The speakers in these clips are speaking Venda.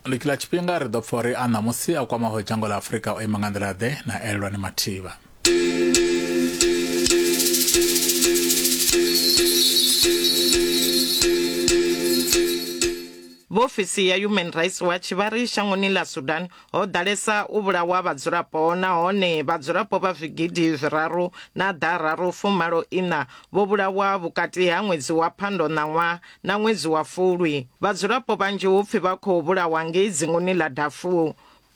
likila tshifhinga ri ḓo pfa uri a ṋamusi a kwamaho dzhango ḽa afurika o ima nga nḓila ḓe na elelwani mathivha vho ofisi ya human rights watch vha ri shangoni ḽa sudan ho ḓalesa u vhulawa vhadzulapo nahone vhadzulapo vha zwigidi zwiraru na ḓararu fumalo iṋa vho vhulawa vhukati ha ṅwedzi wa phando ṋaṅwaha na ṅwedzi wa Fulwi, vhadzulapo vhanzhi hu pfi vha khou vhulawa ngei dzinguni ḽa Darfur.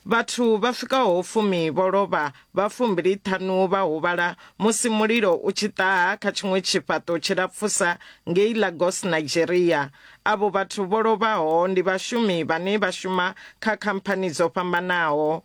Vhathu vha swikaho fumi vho lovha, vha fumbili-ṱhanu vha huvhala musi mulilo u tshi ṱaha kha tshiṅwe tshifhaṱo tshilapfusa ngei Lagos, Nigeria. Avho vhathu vho lovhaho ndi vhashumi vhane vha shuma kha khamphani dzo fhambanaho.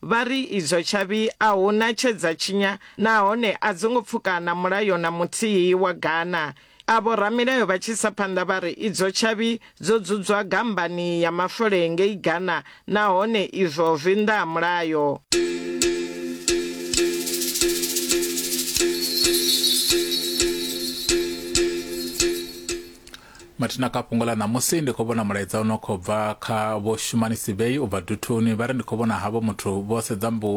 Vha ri idzo tshavhi a hu na tshe dza tshinya nahone a dzo ngo pfuka na mulayo na muthihi wa Ghana. Avho ramilayo vha tshi isa phanḓa vha ri idzo tshavhi dzo dzudzwa gammbani ya mafole ngei Ghana nahone izwo zwi nnḓa ha mulayo. Mathina kha fhungo ḽa ṋamusi, ndi khou vhona mulaedza u no khou bva kha vho shumanisi vhei u bva duthuni vha ri ndi khou vhona havho muthu vho sedza mbu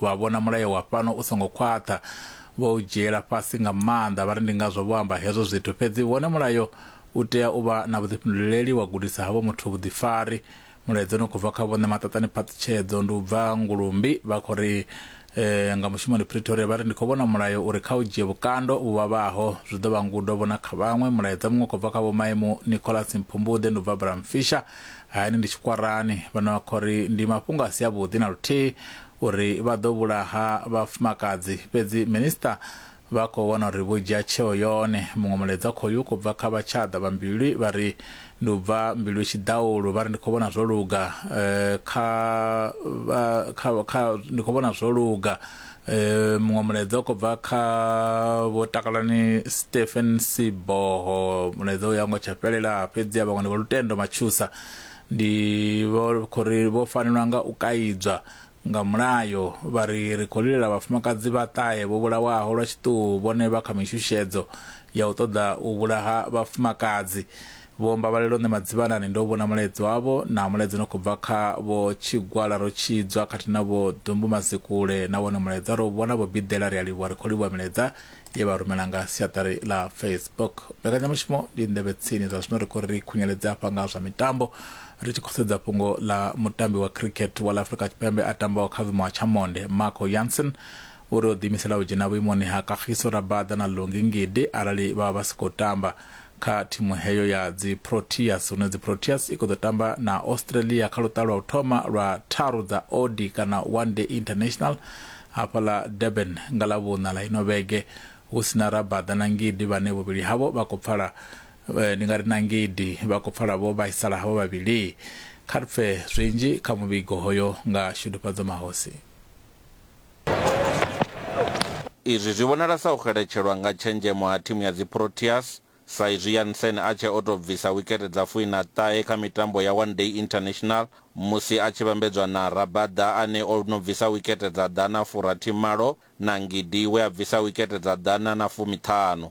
vha vhona mulayo wa fhano u songo khwaṱha vho u dzhiela fhasi nga maanḓa vha ri ndi ngazwo vho amba hezwo zwithu fhedzi wone mulayo u tea u vha na vhuḓifhinduleleli wa gudisa havho muthu vhuḓifari Mulaedza une u khou bva kha Vho Ṋemaṱaṱani Phaṱhutshedzo ndi u bva Ngulumbi, vha khou ri eh, nga mushumoni Pretoria vha ri ndi khou vhona mulayo uri kha u dzhie vhukando vhu vhavhaho zwi ḓo vha ngudo vho na kha vhaṅwe. Mulaedza muṅwe u khou bva kha Vho Maimu Nicholas Mphumbuḓe ndi u bva Bramfisher, hayani ndi Tshikwarani, vhane vha khou ri ndi mafhungo a si avhuḓi na luthihi uri vha ḓo vhulaha vhafumakadzi, fhedzi Minister Vha khou vhona uri vho dzhia tsheo yone. Muṅwe mulaedza khoyu u khou bva kha vhatshada vha Mbilwi vha ri, Ndi u bva Mbilwi Tshidaulu, vha ri, Ndi khou vhona zwo luga kha vha kha kha ndi khou vhona zwo luga. Muṅwe mulaedza u khou bva kha Vho Takalani Stephen Siboho, mulaedza uyu a ngo tsha fhelela, fhedziha vhaṅwe ndi Vho Lutendo Matshusa ndi vho khou ri vho fanelwa nga u kaidzwa Nga mulayo, vha ri, Ri khou lilela vhafumakadzi vhaṱahe vho vhulawaho lwa tshiṱuhu vhone vha kha mishushedzo ya u ṱoḓa u vhulaha vhafumakadzi. Vho Mbabalelo nṋe Madzivhanani ndo vhona mulaedza wavho na mulaedza no khou bva kha Vho Tshigwala Rotshidzwa khathihi na Vho Dumbu Mazikule na wone mulaedza ro u vhona Vho Bidela ri a livhuwa ri khou livhuwa milaedza ye vha rumela nga siaṱari ḽa facebook mbekanyamushumo ndi nḓevhe tsini zwa zwino ri khou ri khunyeledze afha nga zwa mitambo ri tshi khou sedza fhungo ḽa mutambi wa cricket wa ḽa afrika tshipembe a tambaho kha vhuimo ha tshamonde marco yanson uri o ḓiimisela u dzhena vhuimoni ha kagiso rabada na longi ngidi arali vha vha vha si khou tamba Kha thimu heyo ya dziProteas, huno dziProteas i khou ḓo tamba na Australia kha luṱa lwa u thoma lwa tharu dza OD kana One Day International hafha ḽa Durban nga ḽa vhuṋa ḽa ino vhege hu si na Rabada na Ngidi vhane vhuvhili havho vha khou pfala eh, ndi nga ri na Ngidi vha khou pfala vho vhaisala havho vhavhili. Kha ri pfe zwinzhi kha muvhigo hoyo nga Shudufhadzo Mahosi. Izwi zwi vhonala sa u xeletshelwa nga tshenzhemo ha thimu ya dziProteas sa izwi Jansen a tshee o tou bvisa wikete dza fumi na ṱahe kha mitambo ya One Day International musi a tshi vhambedzwa na Rabada ane o no bvisa wikete dza ḓana furathi malo na Ngidi we a bvisa wikete dza ḓana na fumi ṱhanu.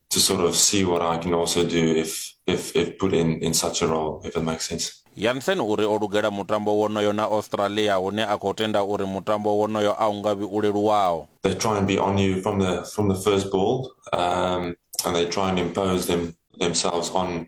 to sort of see what I can also do if if if put in in such a role if it makes sense. Jansen u ri o lugela mutambo wonoyo na Australia hune a khou tenda uri mutambo wonoyo a u nga vhi u leluwaho. They try and be on you from the from the first ball um and they try and impose them themselves on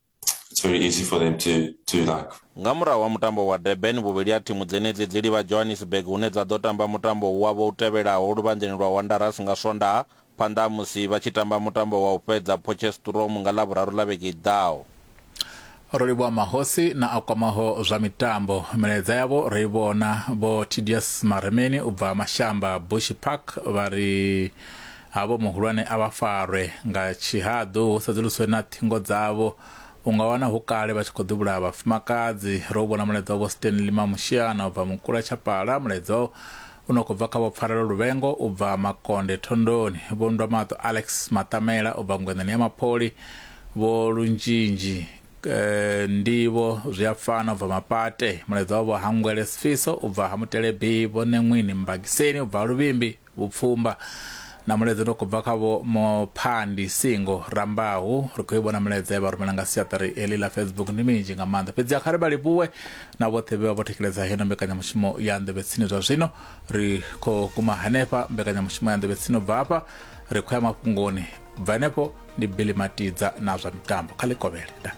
it's very easy for them to to like nga murahu ha mutambo wa Durban vhuvhili ha thimu dzenedzi dzi livha Johannesburg hune dza ḓo tamba mutambo wavho u tevhelaho luvhanḓeni lwa Wanderers nga Swondaha phanḓa ha musi vha tshi tamba mutambo wa u fhedza Potchefstroom nga Ḽavhuraru ḽa vhege i ḓaho. Ro livhuwa mahosi na a kwamaho zwa mitambo. Milaedza yavho ro i vhona. Vho Tidius Maremeni u bva Mashamba Bushi Park vha ri Havho muhulwane a vha farwe nga tshihaḓu hu sedzuluswe na ṱhingo dzavho. U nga wana hu kale vha tshi khou ḓivhulaha vhafumakadzi. Ro u vhona mulaedza wa Vho Stanley Mamushiana u bva Mukula Tshapala, mulaedza u no khou bva kha Vho Pfarelo Luvhengo u bva Makonde Thondoni, Vho Nndwamaṱo Alex Maṱamela u bva Ngweṋeni ya Mapholi, Vho Lunzhinzhi Ndivho Zwiafana u bva Mapate, mulaedza wa Vho Hangwele Sifiso u bva Ha Mutelebi, Vho Neṅwini Mbagiseni u bva Ha Luvhimbi, Vhupfumba na mulaedza une wa khou bva kha vho Mophandi Singo Rambahu. Ri khou i vhona mulaedza ye vha rumela nga siaṱari eḽi ḽa Facebook ndi minzhi nga maanḓa. Fhedziha kha ri vha livhuwe na vhoṱhe vhe vha vho thetsheledza heino mbekanyamushumo ya Nḓevhe Tsini zwa zwino. Ri khou guma hanefha mbekanyamushumo ya Nḓevhe Tsini u bva hafha ri khou ya mafhungoni. Bva henefho ndi Billy Matidza na zwa mitambo kha ḽi kovhele. Ndaa.